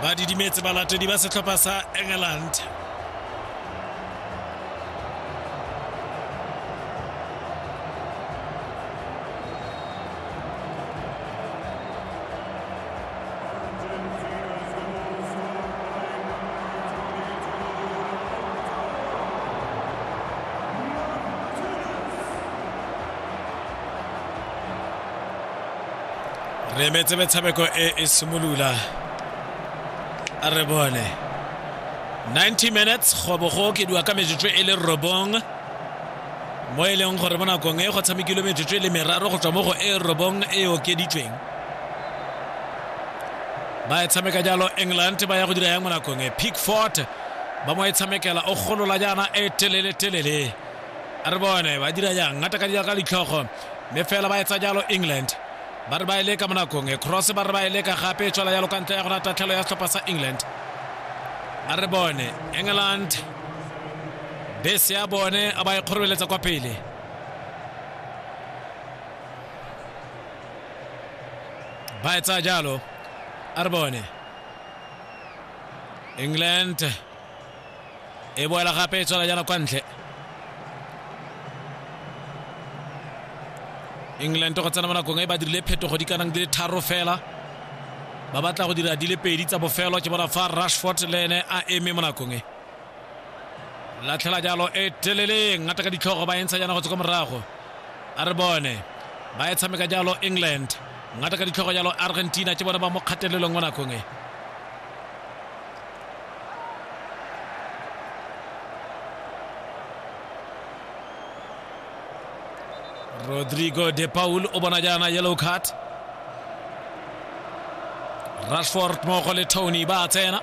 ba didimetse balatedi ba setlhopha sa england re emetse metshameko e e simolola a re bone 90 minutes go bo go okediwa ka metsotso e le robong mo e leng gore mo nakong e go tshamekilwe metsotso e le meraro go tswa mo go e robong e okeditsweng ba e tshameka jalo england ba ya go dira yang mo nakong e pickfort ba mo e tshamekela o golola jaana e telele telele a re bone ba dira jang ngata ka dira ka ditlhogo mme fela ba etsa jalo england ba re ba e leka mo nakong e cross ba re ba e leka gape e tswela jalo ka ntle ya gona tatlhelo ya setlhopha sa england a re bone england bese ya bone a ba e kgorobeletsa kwa pele ba etsa jalo a re bone england e boela gape e tswela jana kwa ntle england go tsena mo nakong e ba dirile phetogo di ka nang di le tharo fela ba batla go dira di le pedi tsa bofelo ke bona fa rashford le ene a eme mo nakong e latlhela jalo e teleleng ngata ka ditlhogo ba entsha jana go tswa kwa morago a re bone ba e tshameka jalo england ngata ka ditlhogo jalo argentina ke bone ba mo kgatelelong mo nakong e rodrigo de paul o bona jaana yellow card rashford mmogo le tony ba tsena